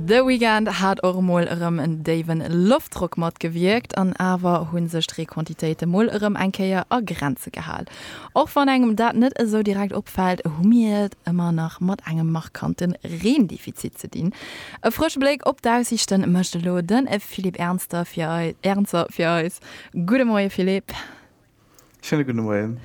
The Weeknd hat och emol erëm en déiwen Loftdrock matgewierkt, an awer hunn sech d'Reequantitéite mol erëm eng Kéier a Grenze gehal. Och wann engem dat net esou direkt opfält, hu mir et ëmmer nach mat engem markante Reendefizit ze dinn. E frësche Bléck op d'Aussiichte mécht elo de Philippe Ernzer fir eis. Gudde Moie Philippe. Schöne gudde Moien.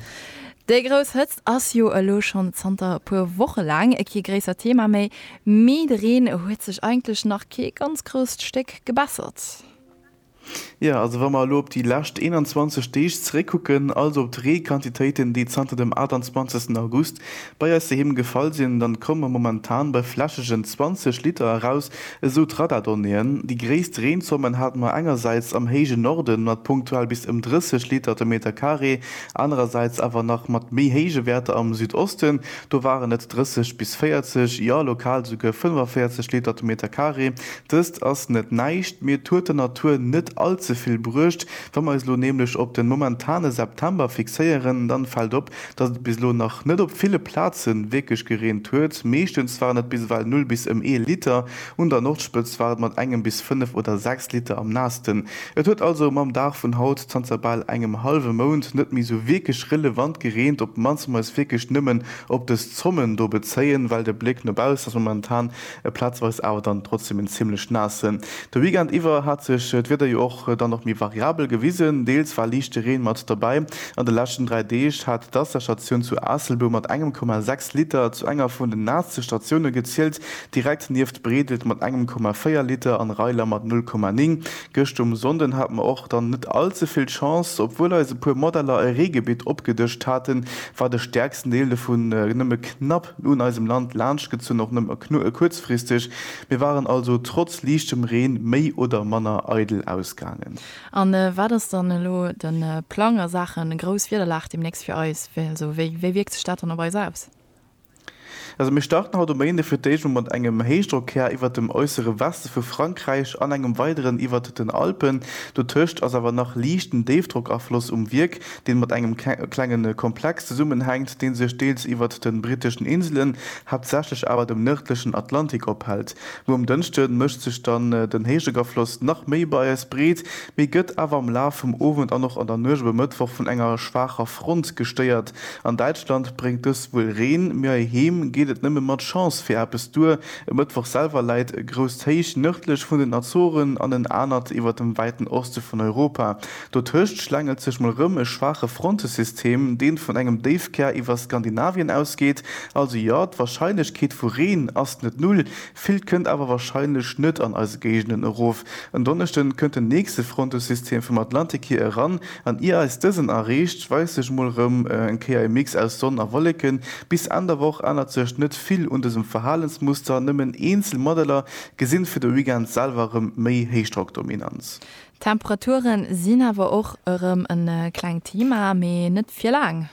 Déi grouss Hëtzt ass jo elo schonn zanter e puer Woche laang kee gréissert Thema méi, mee de Reen huet sech eigentlech nach kee ganz grousst Stéck gebessert. Jo, also wa mer elo op déi lescht 21 Deeg zeréckkucken, also op d'Reequantitéiten, déi zanter dem 28 August bei eis doheem gefall sinn, dann komme mer momentan bei flächegen 20 Liter eraus Esou d'Radardonnéeën. Déi gréisst Reenzommen haten mer engersäits am héije Norden mat punktuell bis ëm 30 Liter de Meter Carré, anerersäits awer nach mat méi héije Wäerter am Südosten. Do waren et 30 bis 40, jo lokal souguer 45 Liter de Meter Carré. Dëst ass net näischt, mee et huet der Natur net all ze vill bruecht. Wa mer eis elo nämlech op de momentane September fixéieren, dann fält op, Dass et bis elo nach net op ville Plaze wierklech gereent huet. Meeschtens waren et bis ewell null bis ëm ee Liter. Un der Nordspëtz war et mat engem bis fënnef oder sechs Liter am naassten. Et huet also mam Dag vun haut, zanter bal engem hallwe Mount, net méi sou wierklech relevant gereent. Op d'mannst muss ee sech wierklech nëmmen op dës Zommen do bezéien, well de Bléck no baussen ass momentan E platzweis awer dann trotzdem en zimmlech naasse. De Weekend iwwer hat sech d'Wieder jo och dann och méi variabel gewisen, deels war liichte Reen mat derbäi. An de leschten 3 Deeg hat d'Waasserstatioun zu Aasselbou mat engem Komma 6 Liter zu enger vun den naasste Statioune gezielt, direkt nieft Bredelt mat engem Komma 4 Liter an Reiler mat 0,9. Gëscht um Sonnden hat mer och dann net all ze vill Chance. Obwuel eis e puer Modeller e Reegebitt opgedëscht haten, war de stäerksten Deel dovun nëmme knapp. un eisem Land laanschtgezunn, och nëmme kuerzfristeg. Mir waren also trotz liichtem Reen méi oder manner eidel ausgaangen. A wat ass dann elo de Plang a Saache grouss Wiederlag deemnächst fir eis? Wéi wierkt sech dat dann op eis aus? Also mir starten haut um Méinde fir d'éischt mol mat engem Héichdrockkär iwwert dem äussere Weste vu Frankräich an engem weideren iwwert den Alpen. Dotëscht ass awer nach liichten Déifdrockafloss um Wierk. deen mat engem klengen Komplex zesummenhänkt, deen sech deels iwwert den britteschen Inselen, haaptsächlech awer dem nërdlechen Atlantik ophält. Muer um Dënschden mécht sech dann den Héichdréckafloss nach méi bei eis breet, mee gëtt awer am Laf vum Owend an och an der Nuecht op e Mëttwoch vun enger schwaacher Front gestéiert. An Däitschland bréngt dëst wuel Reen, mee heiheem geet et nëmme mat Chance fir eppes duer. E Mëttwoch selwer läit e grousst Héich nërdlech vun den Azoren an en anert iwwert dem wäiten Oste vun Europa. Dotëscht schlängelt sech mol rëm e schwaache Frontesystem, deen vun engem Déifkär iwwer Skandinavien ausgeet. Also jo, d'Warscheinlechkeet vu Reen ass net null, villt kënnt awer warscheinlech net an eise Géigenden erof. En Donneschden kënnt den nächste Frontesystem vum Atlantik hier eran, an ier eis dësen erreecht, weist sech mol rëm eng Kéier e Mix aus Sonn a Wolleken. Bis Enn der Woch ännert sech net vill un dësem Verhalensmuster, nëmmen eenzel Modeller gesinn fir de Weekend selwer rëm méi Héichdrockdominanz. D'Temperature sinn awer och erëm e klengt Thema, mee net fir laang.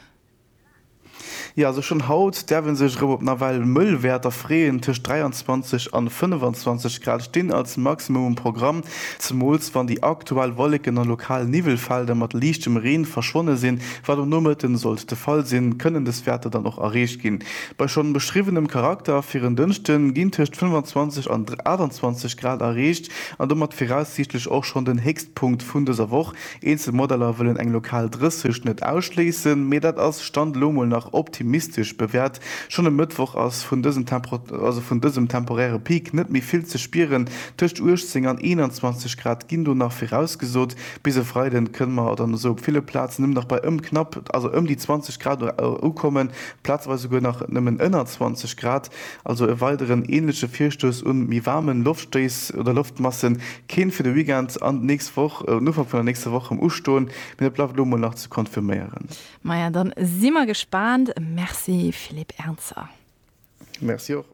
Jo, also schonn haut däerf ee sech erëm op nawell mëll Wäerter freeën. Tëscht 23 an 25 Grad stinn als Maximum um Programm, zemools wann déi aktuell Wolleken a lokal Niwwelfelder mat liichtem Reen verschwonne sinn. Wat um Nomëtten sollt de Fall sinn, kënnen dës Wäerter dann och erreecht ginn. Bei schonn beschriwwenem Charakter fir en Dënschde ginn tëscht 25 an 28 Grad erreecht. An domat viraussiichtlech och schonn den Héchstpunkt vun dëser Woch. Eenzel Modeller wëllen eng lokal 30 net ausschléissen, mee dat ass Stand elo mol nach optimistesch bewäert. Schonn e Mëttwoch ass vun dësem temporäre Peak net méi vill ze spieren, tëscht 18 an 21 Grad ginn do nach virausgesot. Bis e Freide kënne mer dann esou op ville Plazen nëmmen nach bei ëm knapp, also ëm déi 20 Grad ukommen, plazeweis esouguer nach nëmmen ënner 20 Grad. Also e weideren ähnleche Virstouss un méi waarmen Loftstéiss oder Loftmassen. Keen fir de Weekend an d'nächst Woch, den Ufank vun der nächster Woch rem ustoen, mee dat bleift elo mol nach ze konfirméieren. Maja, dann si mer gespaant. Merci Philippe Ernzer. Merci och.